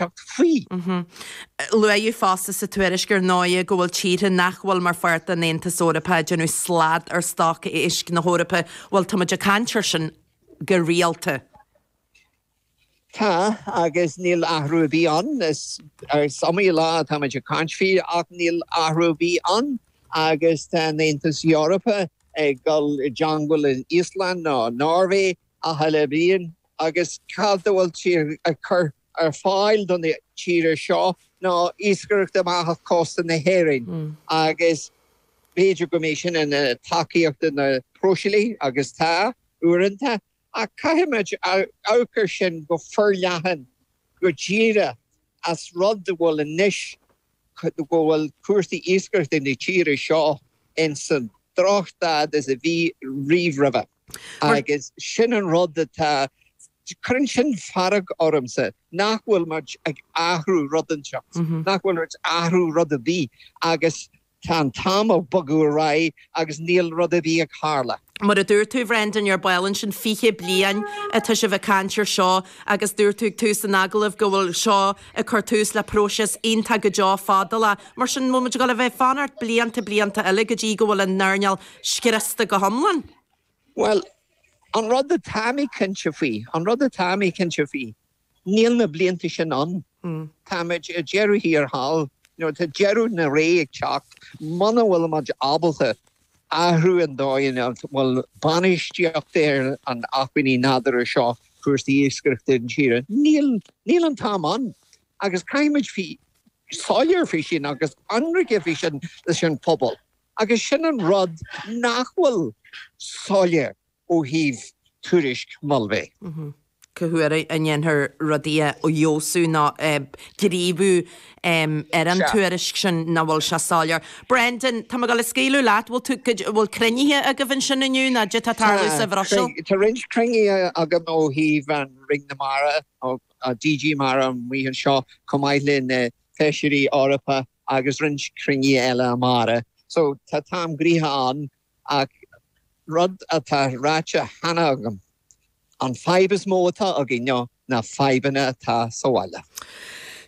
teacht faoi. Luaidheadh fosta sa tuairisc ar ndóigh go bhfuil tíortha nach bhfuil mar pháirt den Aontas Eorpach ag déanamh slad ar stoc éisc na hEorpa. Bhuel tá muid ag caint ar sin go rialta. Tá, agus níl athrú ar bith ann. Is iomaí lá atá muid ag caint faoi ach níl athrú ar bith ann agus tá an Aontas Eorpach ag dul i gceangal le Íoslann nó Noirvé achan bhliain agus cad a bhfuil siad ag cur ar fáil don tíre seo ná iascaireacht amach cósta na hÉirinn agus b'fhéidir go mbeidh sin ina tacaíocht do na próiseálaithe agus tá, uaireanta, ach caithfidh muid amharc ar sin go forleathan go díreach an rud a bhfuil anois go bhfuil cúrsaí iascaireachta na tíre seo insan drochstaid is a bhí riamh roimhe. Agus sin an rud atá, cuireann sin fearg ormsa nach bhfuil muid ag athrú rud inteacht, nach bhfuil muid ag athrú rud ar bith agus tá an t-am ag bogadh ar aghaidh agus níl rud ar bith ag tarlú. Mar a dúirt tú, Bhrendan, nóiméad beag ó shin 20 bliain atá sibh ag caint air seo agus dúirt tú ag tús an agallaimh go bhfuil seo ag cur tús le próiseas iontach go deo fadálach. Mar sin, an bhfuil muid ag dul a bheith ag fanacht blianta, blianta eile go dtí go bhfuil an earnáil scriosta go hiomlán. Bhuel, an rud atá mé cinnte faoi, an rud atá mé cinnte faoi, níl na blianta sin ann. Táimid ar deireadh thiar thall. Nó tá deireadh na ré ag teacht, muna bhfuilimid ábalta athrú an dóigh ina bhfuil bainistíocht ar an acmhainní nádúrtha seo, cúrsaí iascaireachta na tíre, níl, níl an t-am ann. Agus caithfimid bheith soiléir faoi sin agus ionraice faoi sin leis an phobal. Agus sin an rud nach bhfuil soiléir ó thaobh tuairisc Mulvey. Cá huair a ndéanfar rudaí a fheabhsú nó gníomhú ar an tuairisc sin nach bhfuil sé soiléir. Brendan, sula scaoilim leat, bhfuil tú, bhfuil cruinnithe agaibh ansin inniu ná caidé tá tarlú sa Bhruiséil? Tá, tá roinnt cruinnithe againn ó thaobh an Roinn na Mara, DG Mare amuigh anseo chomh maith le na Feisirí Eorpach. agus roinnt cruinnithe eile amárach so tá an t-am gnoitheach ann ach rud atá ráite cheana agam, an fhadhb is mó atá againn ná fadhbanna atá sa bhaile.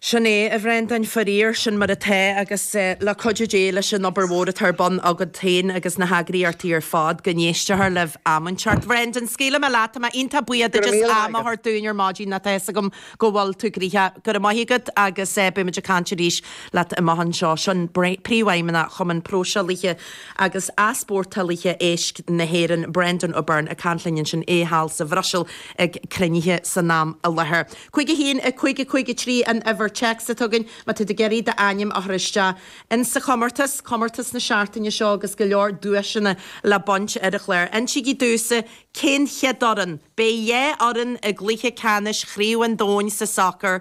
Sin é, a Bhreandáin, faraor, sin mar atá agus le cuidiú Dé, leis an obair mhór atá ar bun agat féin agus na heagraíochtaí ar fad, go n-éistfear libh am inteacht. Bhreandáin, scaoilfidh mé leat, tá mé iontach buíoch duit as am a thabhairt dúinn ar maidin, nó tá fhios agam go bhfuil tú gnoitheach. Go raibh maith agat agus beimid ag caint arís leat amach anseo. Sin Príomhfheidhmeannach Chumann Próiseálaithe agus Easpórtálaithe Éisc na hÉireann, Breandán Ó Beirn ag caint linn ansin, é thall sa Bhruiséil ag cruinnithe san am i láthair. 51553 an uimhir téacs atá againn má tá tú ag iarraidh d'ainm a chur isteach in sa chomórtas, comórtas na seachtaine seo agus go leor duaiseanna le baint ar an chlár. Insigí domhsa Cén chéad fhoireann? Beidh dhá fhoireann i gcluiche ceannais Chraobh an Domhain sa sacar.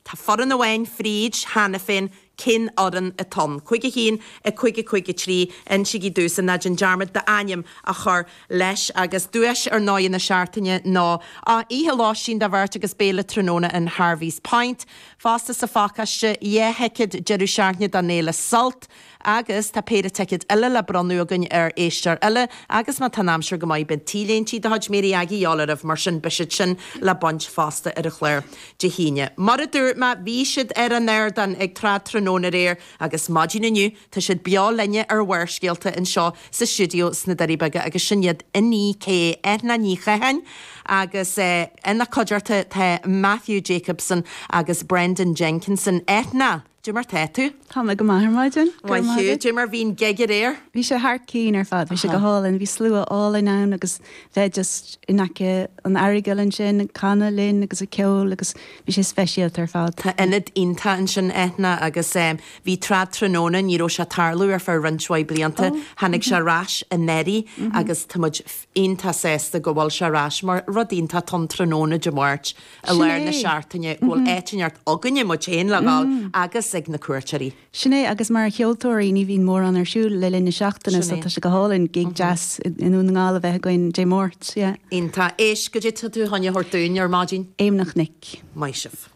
Tá foireann amháin fríd cheana féin, cén fhoireann atá ann? 51553 Insigí domhsa, ná déan dearmad d'ainm a chur leis. Agus duais ar ndóigh na seachtaine ná oíche lóistín do bheirt agus béile tráthnóna in Harvey's Point fosta sa phacáiste. Dhá thicéad deireadh seachtaine don fhéile Sult. Agus tá péire ticéad eile le bronnadh againn ar éisteoir eile agus má tá an aimsir go maith beidh t-léintí de chuid Mary Aggie a dhíobháil oraibh mar sin beidh siad sin le baint fosta ar an chlár Dé hAoine. Mar a dúirt mé bhí siad ar an ardán ag Trad Tráthnóna aréir agus maidin inniu tá siad beo linne ar Bharrscéalta anseo sa stiúideo sna Doirí Beaga agus sin iad Inni-K, Eithne Ní Chatháin agus ina cuideachta tá Matthew Jacobson agus Brendan Jenkinson. Eithne. Dé mar tá tú? Tá mé go maith ar maidin. Go maith thú. Dé mar bhí an gig aréir? Bhí sé thar cinn ar fad, bhí sé go hálainn, bhí slua álainn ann agus bheith just in aice an Earagail ansin ag canadh linn agus ag ceol agus bhí sé speisialta ar fad. Tá ionad iontach ansin Eithne agus bhí Trad Tráthnóna, ní raibh sé ag tarlú ar feadh roinnt mhaith blianta, tháinig sé ar ais anuraidh agus tá muid iontach sásta go bhfuil sé ar ais mar rud iontach atá ann tráthnóna Dé Máirt i Sin lár é. na seachtaine go bhfuil áit inteacht againne, muid féin, le dhul agus ag na cuairteoirí. Sin é agus mar cheoltóirí ní bhíonn mórán ar siúl le linn na seachtaine Sin so é. tá sé go hálainn gig deas i i nDún na nGall a bheith againn Dé Máirt, yeah. Iontach. Éist, caidé tá tú chun a thabhairt dúinn ar maidin. Éamonn an Chnoic. Maith sibh.